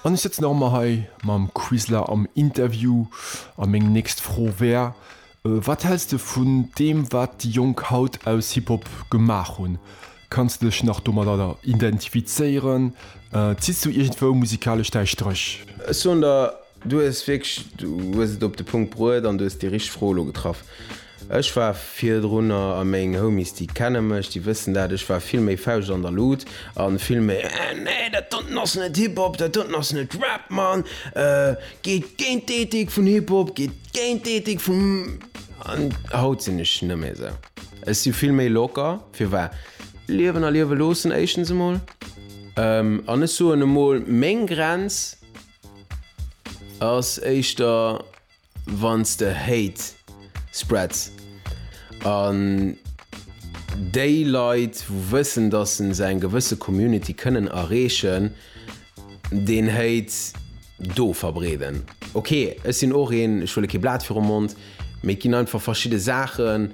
An ech sëtzen nach ëmmer hei mam Quizler am Interview. A meng nächst Fro wär, Wat häls de vun deem wat déi Jonk haut aus Hip-Hop gemaach hunn? Kanns de dech nach domadder identifizéieren? Zitts du iergendwou musikalesch däi Stréch? Ech soen der Du hues wierklech, du hues et op de Punkt bruet an du hues déi richteg Fro elo getraff. Ech war virdrunner, a meng Homies déi kenne mech, déi wëssen dat, ech war vill méi Fauscht an der Lut a vill méi nee dat doten ass net Hip Hop, dat doten ass net Rap Mann, geet géint d'Ethik vun Hip Hop, geet géint d'Ethik vum an haut sinn ech net méi esou. Ech si vill méi locker, firwat? Liewen a liewe loossen éischtens emol an ech soen emol meng Grenz. Ass éischter wanns de Hate spreads an déi Leit wou wëssen dass se eng gewësse Community kënnen erreechen deen Hate do verbreeden. Ok ech sinn och een, ech huele kee Blat virum Mond, mee et ginn einfach verschidde Saachen,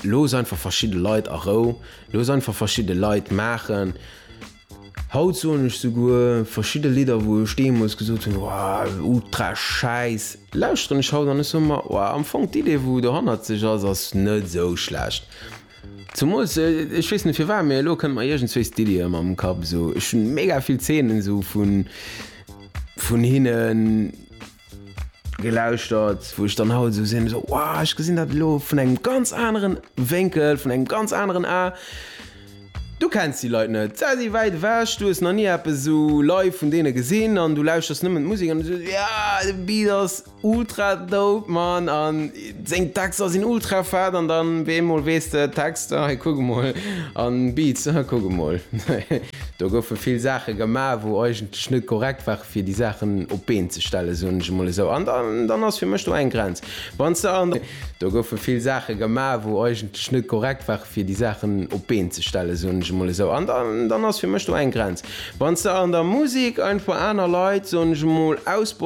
looss einfach verschidde Leit a Rou, looss einfach verschidde Leit maachen. Haut soen ech souguer verschidde Lidder wou ech deemols gesot hunn Wouah, ultra schäiss, lauschteren ech haut an ech soe mer Wouah, am Fong d'Idee wou dohannert sech ass, ass net esou schlecht. Zemools, ech weess net firwat, mee elo kënnt mer iergendswéis d'Iddi ëmmer am Kapp esou, ech hunn mega vill Zeenen esou vun hinnen. Gelauschtert, wou ech dann haut esou sinn, esou wow, ech gesinn dat elo vun engem ganz aneren Wénkel, vun engem ganz aneren A. Du kenns déi Leit net, se si wäit ewech, du hues nach ni eppes esou live vun deene gesinn an du lauschters nëmmen d'Musek an du soos, yeah, de Beat ass ultra dope, Mann! Seng Texter sinn ultra fett an dann wéi eemol weess de, Text, ah hei kuck emol, an Beats, ah kuck emol. Do goufe vill Saache gemaach wou eigentlech net korrekt ware fir déi Saachen op d'Been ze stellen, soen ech emol esou, an dann ass fir mech do eng Grenz. Wanns de an. Do goufe vill Saache gemaach wou eigentlech net korrekt ware fir déi Saachen op d'Been ze stellen, soen ech emol esou, an dann ass fir mech do eng Grenz. Wanns de an der Musek einfach aner Leit, soen ech emol, ausbeutes,